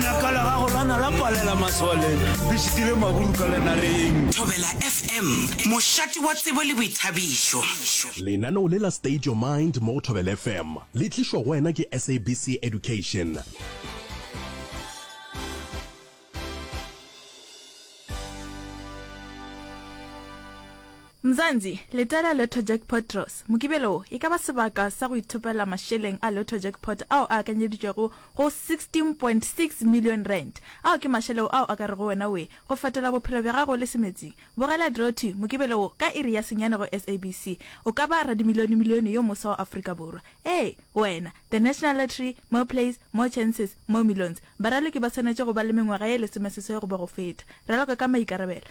Laka la gago la na la palela maswaleng, le šitile maburu ka lenareng. Thobela FM, mošate wa tsebo le boithabišo. Lenaneo le la State Your Mind mo go Thobela FM le tlišwa go wena ke SABC Education. Mzansi, leta la Lotto Jackpot Draws, Mokibelo wo e ka ba sebaka sa go ithopela mašeleng a Lotto Jackpot ao a akanyeditšwego go R16.6 million, ao ke mašeleo ao a ka rego wena we go fetola bophelo bja gago le semetsing. Bogela Drewty, Mokibelo wo, ka iri ya senyane go SABC. O ka ba radimilionemilione yo moswa wa Afrika Borwa. Ee, wena! The National Lottery, More Plays, More Chances, More Millions. Baraloki ba swanetše go ba le mengwaga ye lesomeseswai goba go feta. Raloka ka maikarabelo.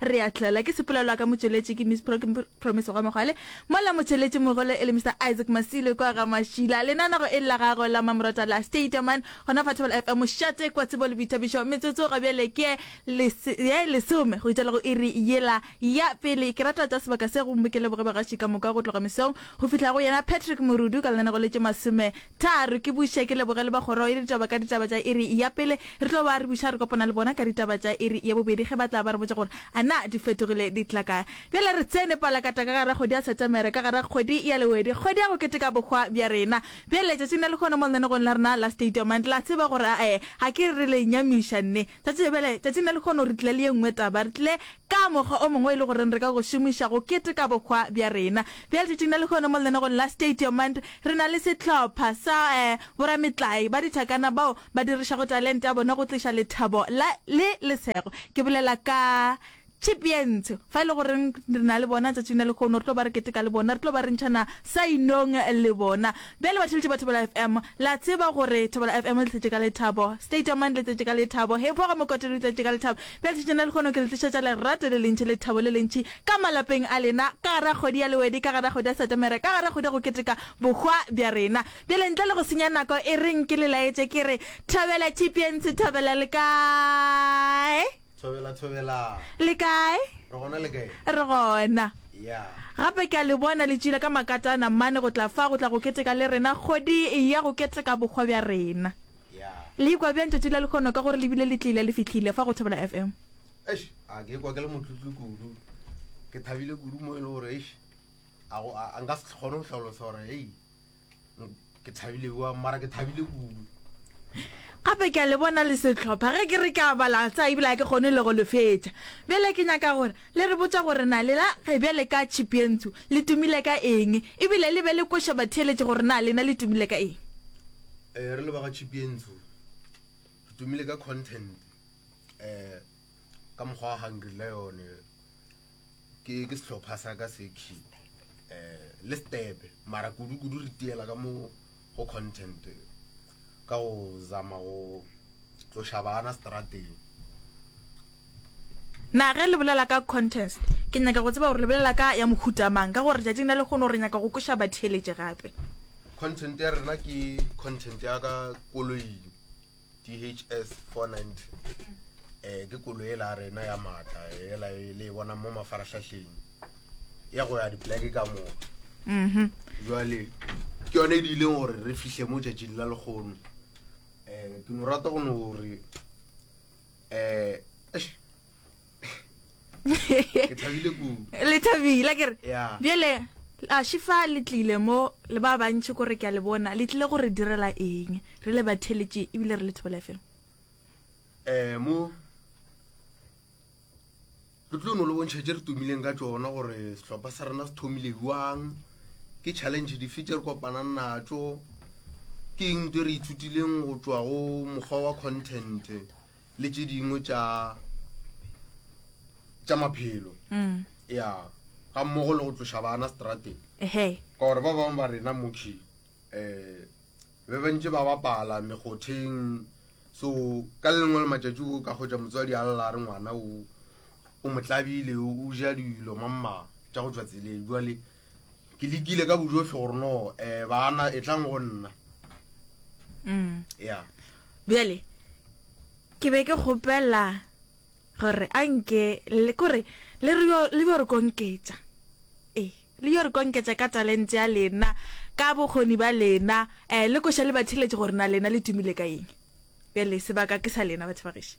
Re a tlela ke sepolelwa ka motšweletši ke Miss Promise Gwamogwale, mola motšweletši mogolo e le Mister Isaac Masilo kwa ga Mašila. Lenanego e le la gagwe la mmamoratwa la Stadium Man gona fa Thobela FM mošate kwa Tsebo le Boithabišo. Metsotso ga bjale ke ye lesome go itšela go iri yela ya pele. Ke rata tša sebaka se go mmokele bogebagaši ka moka go tloga mesong go fihla go yena Patrick Morudu ka lenanego le tše masome Tha re ke buše ke leboge le ba kgoro ya ditaba ka ditaba tša iri ya pele. Re tlo ba re buša re kopana le bona ka ditaba tša iri ya bobedi ge ba tla ba re botša gore a na di fetogile di tla kae. Bjale re tsene palakata ka gare ga kgwedi ya Setemere, ka gare ga kgwedi ya Lehwedi, kgwedi ya go keteka bohwa bja rena. Bjale letšatšing la lehono mo lenanegong la rena la State Your Mind, la tseba gore a e ga ke re le nyamiša nne. Tšatši le bjale, tšatšing la lehono, re tlile le ye nngwe taba. Re tlile ka mokgwa o mongwe e le goreng re ka go šomiša go keteka bohwa bja rena. Bjale tšatšing la lehono mo lenanegong la Stadiumand, re na le sehlopha sa eh, borametlae ba dithakana bao ba dirišago talente ya bona go tliša lethabo la, le lesego. Ke bolela ka Tšhipi ye ntsho, fa e le goreng re na le bona letšatšing la lekgono, re tlo ba re keteka le bona, re tlo ba re ntšhana sainong le bona. Bjale batheletši ba Thobela FM, le a tseba gore Thobela FM le tletše ka lethabo, State of Mind le tletše ka lethabo, Hephoga Mokotelo le tletše ka lethabo. Bjale letšatšing la lekgono ke le tlišetša lerato le lentši, lethabo le lentši ka malapeng a lena, ka gare ga kgwedi ya Lewedi, ka gare ga kgwedi ya Setemere, ka gare ga kgwedi ya go keteka bohwa bja rena. Bjale ntle le go senya nako, e reng ke le laetše ke re, Thobela tšhipi ye ntsho, Thobela le kae? Thobela, thobela. Le kae? Re gona le kae? Re gona. Ya. Gape ke a le bona le tšile ka makatana mane go tla fa go tla go keteka le rena kgodi ya go keteka bokgwa bja rena. Ya. Le ikwa bjang tšatši la lekgono ka gore le bile le tlile le fihlile fa go Thobela FM? Eish, a ke ikwa ke le motlotlo kudu. Ke thabile kudu mo e le gore eish a go a nka se kgone go hlalosa gore hey ke thabile wa mara ke thabile kudu gape ke a le bona le setlhopha ge ke re ke a bala tsa ebile a ke kgone le go le fetša bjale ke nyaka gore le re botsa gore na lela ge bjale ka chipientsho le tumile ka eng ebile le be le koša batheeletše gore na lena le tumile ka eng um re le ba ga chipientsho re tumile ka content um ka mokgwa wa hungry lion ke ke sehlopha sa ka se key um le stebe mara kudu-kudu re tiela ka mo go content ka go zama go tloša bana strateng na ge le bolela ka contest ke nyaka go tseba gore le bolela ka ya mohutamang ka gore tšatšing la lekgono re nyaka go koša batheeletše gape content ya rena ke content ya ka koloing DHS 490 eh ke kolo e la rena ya matla e la e le bona mo mafarahlahleng ya go ya dipleke ka mo mhm jwale ke yone e di ileng gore re fihle mo tšatšing la lekgono eh ke no rata go no gore eh eish, le thabile ke re bjale a shifa le tlile mo le ba bantšhi kore ke a le bona le tlile gore direla eng re le batheletše ebile re le thobela fm um mo re tlo no le bontšha tše re tumileng ka tsona gore setlhopha sa rena se thomile jwang ke challenge dife tše re kopanang natso ke eng tse re ithutileng go tswa go mokgwa wa content le tše dingwe tša tša maphelo mm. ya ga mmogo le go tloša bana strateng ka gore ba bangwe ba rena mokhi um be bantse ba bapala megotheng so ka le lengwe le matšatši o ka kgotsa motswadi a lela re ngwana o o motlabile o ja dilo mamma tša go tswa tseleng jale Ke lekile ka bojohle gore no eh bana e tlang go nna. Mm. Yeah. Bjale ke be ke kgopela gore a nke le kore le re yo le yo re konketsa. Eh, le yo re konketsa ka talente ya lena, ka bokgoni ba lena, eh le koša le batheletše gore na lena le tumile ka eng. Bjale sebaka ke sa lena batho ba gešo.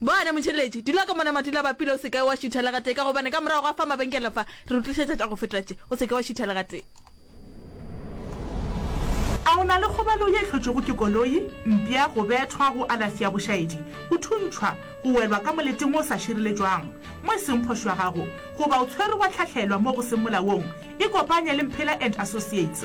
Bona, motheeletši, dula ka mona matula ba pila, o se ka wa šutha le gatee, ka gobane ka morago ga fa mabenkele fa, re o tlišetša tša go feta tše. O se ke wa šutha le gatee. A o na le kgobalo ye e hlotšwego ke koloi, mpša, go bethwa, go alafsi ya bošaedi, go thuntšhwa, go welwa ka moleting wo o sa šireletšwang, mo e seng phošo ya gago, goba o tshwerwe wa hlahlelwa mo go seng molaong? Ikopanye le Mphela and Associates.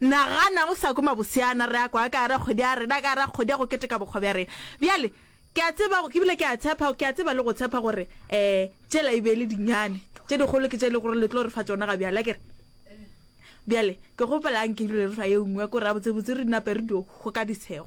Nagana o sa kwe maboseana re a kwa ka gare kgodi ya rena, ka gare kgodi ya go keteka bokgwa bja rena. Bjale, ke a tseba, ke bile ke a tshepa, ke a tseba le go tshepa gore, ee, tšela e be e le dinyane tše dikgolo ke tše e lego gore le tlo re fa tšona ga bjale, akere? Bjale, ke kgopela a nke ebile re fa ye nngwe, ke gore gabotsebotse re nape re dio go ka disego.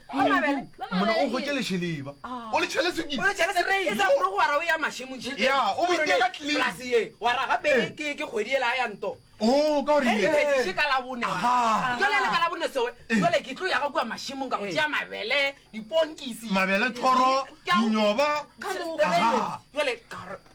mona o gotse lešeleba o le tšhele sekile mabele thoro dinyoba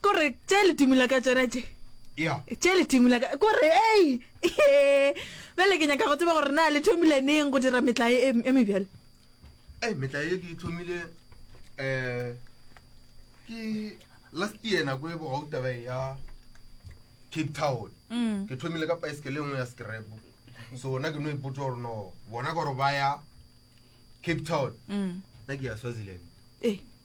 kore tše ledimo la ka tsona tše ya tše ledimo la ka kore ei bjale ke nyaka go tseba gore na le thomile neng go dira metla e e- e mebjale e metla ye ke e thomile um ke last year nako e bogau taba e ya cape town Mm. ke thomile ka paesekele nngwe ya scrap so na ke no ipotsa gore no bona gore ba ya cape town Mm. na ke ya swaziland ee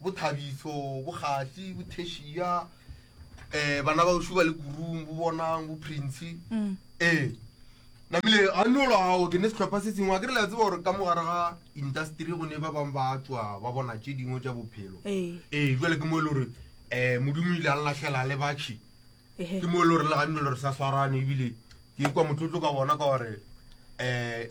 bo Thabiso, bo Kgahli, bo Theshia, eh bana ba Ushuba le Kurung, bo Bonang, bo Prince. Mm. Eh. Namile a no lo ao ke ne se tlhopha se sengwe a ke re la tseba gore ka mogare ga industry go ne ba bang ba tswa ba bona tše dingwe tša bophelo. Eh. Eh jwale ke mo le gore eh modimo ile a lahlela le batšhi. Eh. Ke mo le gore le ganne le re sa swarane ebile ke kwa motlotlo ka bona ka gore eh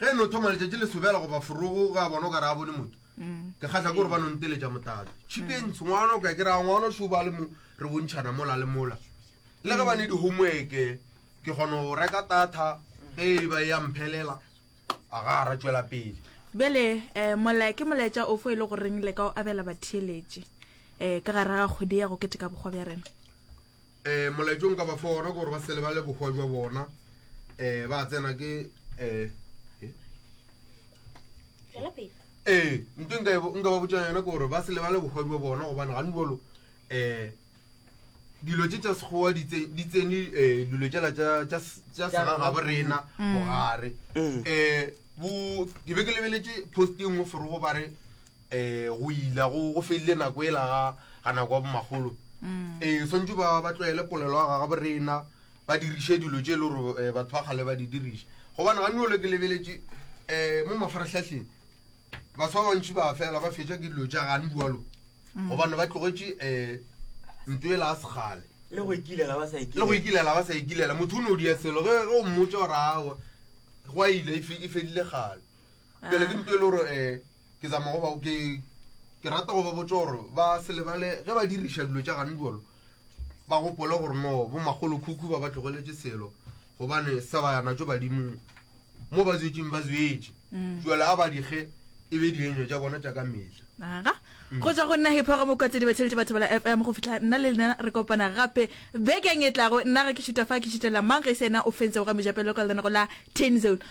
Ge e no thoma letšatši le sobela goba forogo, ge a bona o ka re a bone motho, ke kgahla ke gore ba no nteletša motatso. Tšhipeng, Sengwano, ka ke re a ngwano šo ba le mo re bontšhana mola le mola. Le ge ba ne di-homework-e, ke kgona go reka data ge e ba e ya mphelela, a ga a ra tšwela pele. Bjale um mola ke molaetša ofo e le goreng le ka o abela batheeletši um ka gare ga kgwedi ya go keteka bokgwa bja rena? um molaetšo nka ba fa ona gore ba se lebale bohwa jwa bona um ba tsena ke um ee nto nka ba botšang yona ke gore ba se lebale bohwa jwa bona gobane gane bolo um dilo tše tša sekgowa di tsene um dilo tšela tša segagabo rena mogare um ke be ke lebeletše posting o forogo ba re um go ila go go felile nako ela ga ga nako ya bomakgolo um swantse ba ba tlwaele polelo ya gaga borena ba diriše dilo tše e le gore um batho ba kgale ba di diriša gobane ga nole ke lebeletše um mo mafarahlahleng batho ba bantši ba fela ba fetša ke dilo tša gane bualo gobane ba tlogetše um nto ela a segale le go ikilela ba sa le go ikilela ikilela ba sa ikilela motho o ne o dia selo ge ge o mmotsa gore awa go a ile e fe- e fedile gale pele ke nto e le gore um ke zama go ba ke ke rata go ba botsa gore ba se lebale ge ba diriša dilo tša gane jalo ba gopole gore no bo magolo khukhu ba ba tlogeletse selo gobane sa ba yana tso badimong mo ba zwetseng ba zwetse mm. jwale a ba dikge e be dienyo tša bona tša ka metlha aga mm. go tswa go nna hipho ga mokwatse di batheletše batho bala fm go fitlha nna le lena re kopana gape bekeng e tlago nna ga ke šuta fa ke šutela mang ge se ena o fentse go ga mejapelo ka lenako la ten zone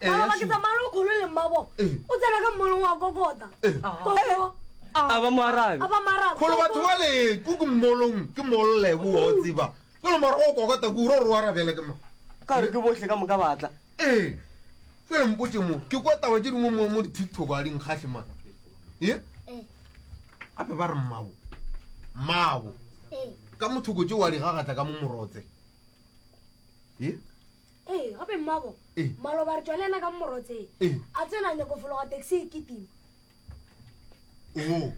Baba ke tsamaya lo kholo le mmabo. O tsena ka mmolo wa kokota. Koko. A ba moarabe. A ba moarabe. Kholo batho ba le ku ku mmolong ke molle ku wa o tsiba. Ke lo mara o kokota ku ro ro arabele ke mo. Ka re ke bohle ka moka batla. Eh. Ke le mpotse mo. Ke kwa taba tse dingwe mo mo di TikTok a ding khahle man. Eh. A ba re mmabo. Mmabo. Eh. Ka motho go tse wa di gagatla ka mo morotse. Eh. Ee, gape mmabo, Ee. maloba re tšwa le yena ka mmorotseng. Ee. A tsena a nyako fologa taxi e kitima. Oo.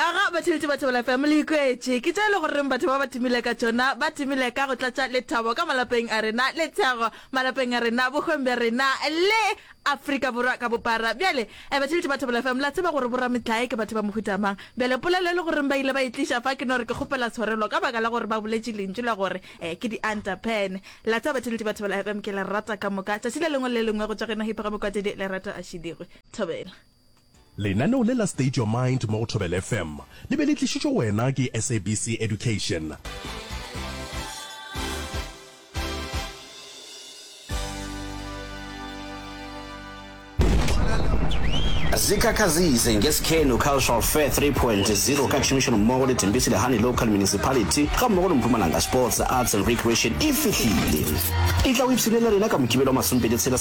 Aga batheletši ba Thobela FM le ikwetše ke tše e le goreng batho ba ba timile ka tšona ba timile ka go tlatša lethabo ka malapeng a rena, lethego malapeng a rena, bokgweng bja rena le Afrika Borwa ka bophara. Bjale, Ebatšhelete ba Thebola FM, le a tseba gore bo-rametlae ke batho ba mohuta mang. Bjale, polelo e le goreng ba ile ba e tliša fa, ke no re ke kgopela tshwarelo ka baka la gore ba boletše lentšu la gore, ee, ke di-Antapen. Le a tseba, Batšhelete ba Thebola FM, ke le rata ka moka. Tšatši le lengwe le le lengwe go tšwa go yena Hipho Gamokwatedi, Lerato Ashidigwe. Thobela. Lenaneo le la State Your Mind mo go Thobela FM le be le tlišitšwe wena ke SABC Education. zikhakhazise ngesikhenu cultural fair 3.0 ka tšhomišano mmogo le tembisi lehane local municipality ga mmogo le mpumalanga sports arts and recreation e fihlile e tla o ipshinelela rena ka mokibelo wa masompedi tshela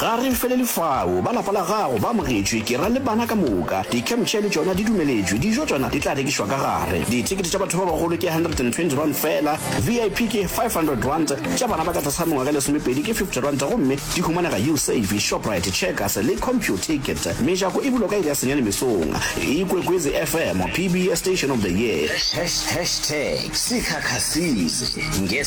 Ga re felele fao. Ba lapa la gago ba amogetšwe, ke ra le bana ka moka. Di-camp chair le tšona di dumeletšwe. Dijo tšona di tla rekišwa ka gare. Dithekete tša batho ba bagolo ke R120 feela, VIP ke R500, tša bana ba ka tlase ga mengwaga e lesomepedi ke R50 gomme di humanega Usave, Shoprite, Checkers le Computicket. Mejako e bulwa ka iri ya senyane mesong. Ikwekwezi FM, PBS Station of the Year. Hashtag Sikhakha Size.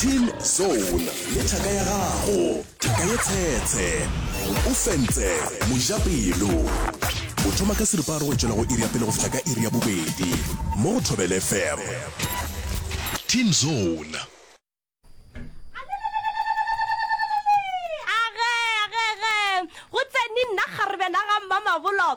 Team Zone le thaka ya gago, thaka ye tshetshe. O fentse mojapelo. O thoma ka seripa a re go tšwela go iri ya pele go fihla ka iri ya bobedi mo go Thobele FM. Team Zone. Age, age, age. Go tseni nna kgarebe la ga Mmamabolo.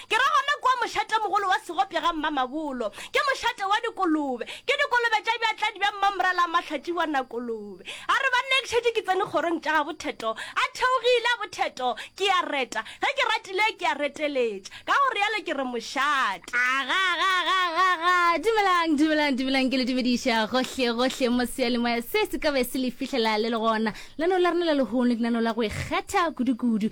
Ke ra gona kua mošatemogolo wa segopša ga Mmamabolo. Ke mošate wa dikolobe. Ke dikolobe tša bjatladi bja Mmamoralamahlathi wa Nakolobe. A re, Banna ke šetše ke tsene kgorong tša gabo Theto. A theogile, a bo Theto, ke a reta. Ge ke ratile, ke a reteletša. Ka go realo ke re mošate. Agagagagaga! Dumelang, dumelang, dumelang, ke le dumediša gohle, gohle mo seyalemoya se se ka be se le fihlela le le gona. Lenaneo la rena la lehono ke lenaneo la go ikgetha kudu-kudu.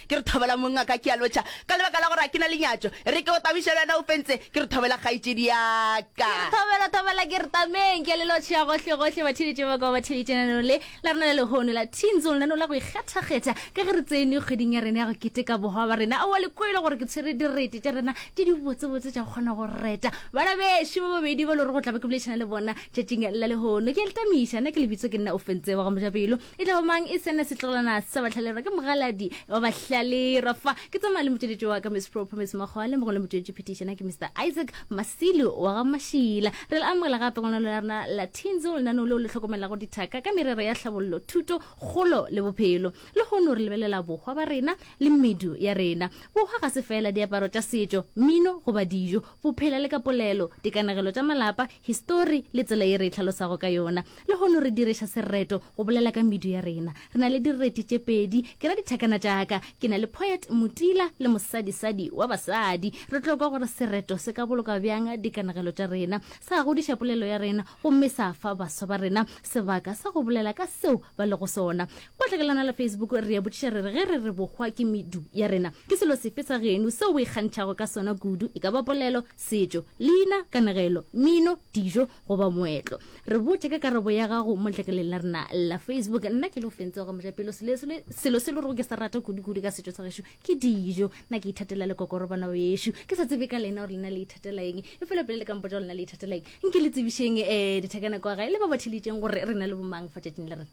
Ke re thobela monna ka ke a lotšha ka lebaka la gore a ke na le nyatšo. E re ke go tabiše le wena o fentse. Ke re thobela kgaetšedi ya ka. Ke re thobela thobela ke re tameng ke a le lotšha gohle gohle ba theeditše ba kwa ba theeditše lenaneo le la rena la lehono la Teen Zone lenaneo la go ikgethakgetha ka ge re tsene kgweding ya rena ya go keteka bohwa ba rena. Aowa le kwele gore ke tshwere direte tša rena tše di botse botse tša go kgona go reta bana bešo ba babedi ba le gore go tla be ke boledišana le bona tšatšing la lehono. Ke a le tamiša nna ke lebitso ke nna Ofentse wa ga Mojapelo e tla ba mang e sene setlogelana sa batlhalerwa ke mogaladi wa bahlalerwa fa ke tsamaya le motšweletši wa ka miss propomis mokgwa le mongwe le motšweletši phetišana ke mr isaac masilo wa ga mašila re le amogela gape gonano la rena la tinzo lenaneo leo le tlhokomelago dithaka ka merero ya tlhabollo thuto kgolo le bophelo le gono re lebelela bohwa ba rena le medu ya rena bohwa ga se fela diaparo tša setšo mmino goba dijo bophela le ka polelo dikanegelo tša malapa histori le tsela ye re e tlhalosago ka yona Lehono re direša sereto go bolela ka medu ya rena. Re na le direti tše pedi, ke ra dithakana tša ka. Ke na le Poet Motila le mosadisadi wa basadi. Re tlo kwa gore sereto se ka boloka bjang dikanegelo tša rena, sa godiša polelo ya rena gomme sa fa baswa ba rena sebaka sa go bolela ka seo ba lego sona. Kwa tlhakelana la Facebook re a botšiša re re ge re re bohwa ke medu ya rena, ke selo sefe sa genu seo o ikgantšhago ka sona kudu, e ka ba polelo, setšo, leina, kanegelo, mino, dijo, goba moetlo. Re botše ka karabo ya gago mo letlakaleng la rena la Facebook. Nna ke Lofentse wa Gamojapelo. Sele, sele, selo se le gore ke se rata kudu-kudu ka setšo sa gešo ke dijo. Nna ke ithatela lekokorobana bešo. Ke sa tsebe ka lena gore lena le ithatela eng, efela pele le ka mpotša gore lena le ithatela eng, nke le tsebišeng um dithekana kwa gae le ba ba theelitšeng gore re na le bomang fa tšatšing la rena.